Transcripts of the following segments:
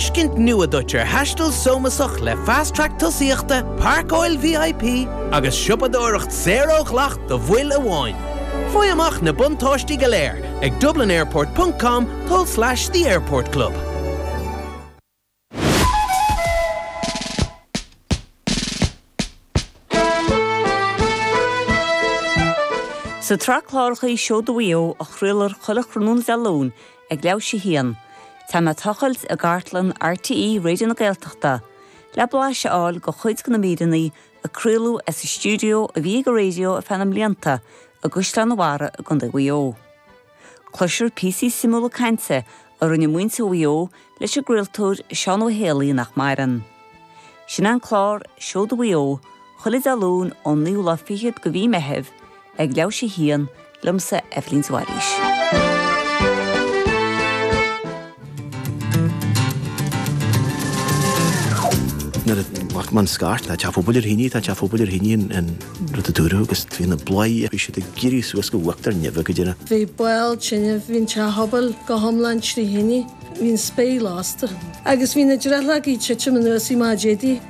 tuiscint nua duit ar thaisteal sómasach le Fast Track tosaíochta, páirceáil VIP agus siopadóireacht saor ó dhleacht do bhaill amháin. Faigh amach na buntáistí go léir ag dublinairport ponc com tulslais the airport club. Sa tsraith cláracha Seoda Mhaigh Eo a chraolar chuile thráthnóna Dé Luain ag leathuair théis a haon, téann mé ag tochailt i gcartlann RTÉ Raidió na Gaeltachta le blaiseadh a fháil de chuid de na míreanna a craoladh as an stiúideo a bhí ag an raidió ar feadh na mblianta i gCaisleán an Bharraigh i gContae Mhaigh Eo. Cloisfear píosaí suimiúla cainte a rinne muintir Mhaigh Eo leis an gcraoltóir Seán Ó hÉalaí nach maireann. Sin an clár Seoda Mhaigh Eo chuile Dé Luain ón naoú lá fichead de mhí Meitheamh ag leathuair théis a haon, liomsa Eibhlín de Bhailís. Nuair a bhac man scairt tá teach an phobail ar thine, tá teach an phobail ar thine an rud a dúradh agus bhí na bladhairí bhí siad ag éirí suas go huachtar neimhe, a dhuine. Bhí ball tineadh, bhí an teach phobail go hiomlán trí thine, bhí an spéir lasta. Agus bhí na drithleogaí ag titim anuas i Má Dhéidí.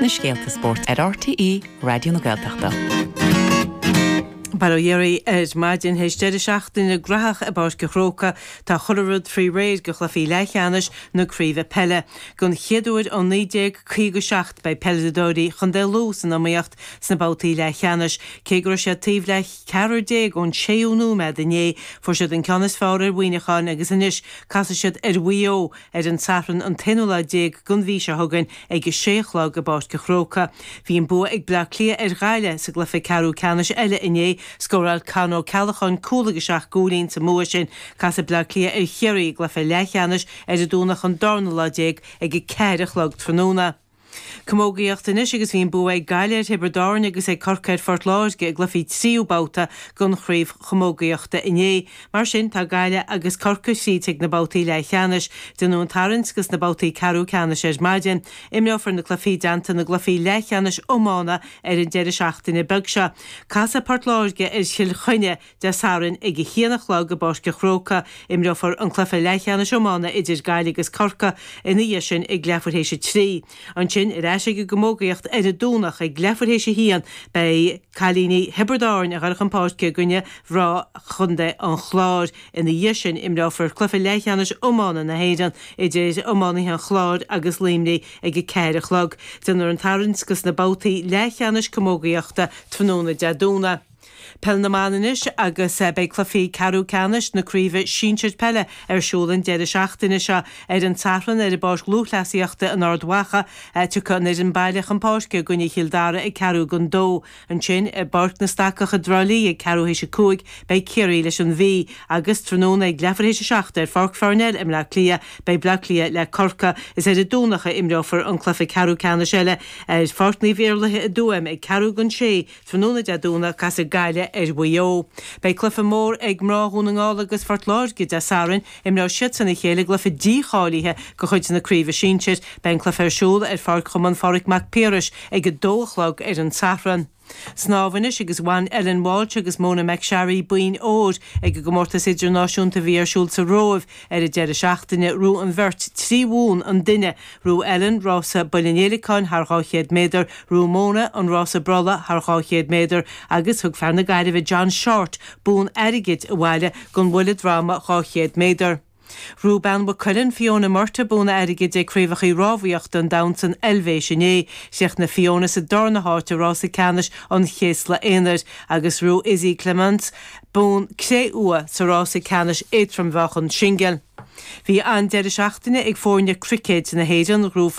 na scéalta spóirt ar RTÉ Raidió na Gaeltachta. Bail ó Dhia oraibh ar maidin théis deireadh seachtaine graitheach i bPáirc an Chrócaigh, tá chuile rud faoi réir do chluichí leathcheannais na craoibhe peile. Don chéad uair ó 1957 beidh peileadóirí Chontae Lú san iomaíocht sna babhtaí leathcheannais. Cé go raibh siad taobh le ceathrar déag ón séú nóiméad inné, fuair siad an ceann is fearr ar Mhuineacháin agus anois casfaidh siad ar Mhaigh Eo, ar an Satharn an t-aonú lá déag den mhí seo chugainn ag a sé a chlog i bPáirc an Chrócaigh. Bhí an bua ag Bleá Cliath ar Ghaillimh sa gcluiche ceathrú ceannais eile inné. Scóráil Con Ó Ceallacháin cúl agus seacht gcúilín sa mbua sin. Casfaidh Bleá Cliath ar Chiarraí i gcluiche leathcheannais ar an Domhnach an darna lá déag ag a ceathair a chlog tráthnóna. Camógaíocht anois agus bhí an bua ag Gaillimh ar Thiobraid Árann agus ag Corcaigh ar Phort Láirge i gcluichí tríú babhta den chraobh chamógaíochta inné. Mar sin, tá Gaillimh agus Corcaigh tríd chuig na babhtaí leathcheannais. Déanadh an tarraingt go sna babhtaí ceathrú ceannais ar maidin. Imreofar na cluichí i dteannta na gcluichí leathcheannais iomána ar an deireadh seachtaine beag seo. Casfaidh Port Láirge ar Chill Chainnigh Dé Sathairn ag a haon a chlog i bPáirc an Chrócaigh. Imreofar an cluiche leathcheannais iomána idir Gaillimh agus Corcaigh ina dhiaidh sin ag leathuair théis a trí. Ansin, ar ais ag an gcamógaíocht ar an Domhnach ag leathuair théis a haon, beidh cailíní Thiobraid Árann ag goil chun páirce i gcoinne mhná Chontae an Chláir. Ina dhiaidh sin imreofar cluiche leathcheannais iomána na hÉireann idir iománaithe an Chláir agus Luimnigh ag a ceathair a chlog. Déanfar an tarraingt go sna babhtaí leathcheannais camógaíochta tráthnóna Dé Domhnaigh. Peil na mBan anois agus beidh cluichí ceathrú ceannais na craoibhe sinsir peile ar siúl an deireadh seachtaine seo. Ar an tSatharn ar an bPáirc Lúthchleasaíochta in Ard Mhacha tiocfaidh an fhoireann baile chun páirce i gcoinne Chill Dara ag ceathrú don dó. Ansin i bPáirc na Stacach i dTrá Lí ag ceathrú théis a cúig beidh Ciarraí leis an Mhí agus tráthnóna ag leathuair théis a seacht ar Pháirc Pharnell i mBleá Cliath beidh Bleá Cliath le Corcaigh. Is ar an Domhnach a imreofar an cluiche ceathrú ceannais eile ar Pháirc Naomh Iarlaithe i dTuaim ag ceathrú don sé Tráthnóna Dé Domhnaigh, casfaidh Gaillimh ar Mhaigh Eo. Beidh cluiche mór ag mná Dhún na nGall agus Phort Láirge Dé Sathairn. Imreoidh siadsan a chéile i gcluiche dícháilithe de chuid na craoibhe sinsir. Beidh an cluiche ar siúl ar Pháirc Chumann Phádraig Mac Piarais ag 2 a chlog ar an tSatharn. Snámh anois agus bhain Ellen Walshe agus Mona McSharry boinn óir ag an gcomórtas idirnáisiúnta a bhí ar siúl sa Róimh ar an deireadh seachtaine. Ghnóthaigh an bheirt trí bhonn an duine Ghnóthaigh Ellen rása bhuille an fhéileacáin thar 200 méadar, ghnóthaigh Mona an rása brollaigh thar 200 méadar agus thug fear na Gaillimhe John Shortt bonn airgid abhaile don bhuille droma 200 méadar. Ghnóthaigh bean Mhaigh Cuilinn, Fiona Murtagh bonn airgid ag Craobhacha Rámhaíochta an Domhain san Eilvéis inné. Chríochnaigh Fiona sa darna háit i Rása Ceannais an Chéasla Aonair agus ghnóthaigh Izzy Clements, bonn cré-umha sa rása ceannais éadrom-mheáchan singil. Bhí an-deireadh seachtaine ag foirne cruicéid na hÉireann, ghnóthaigh.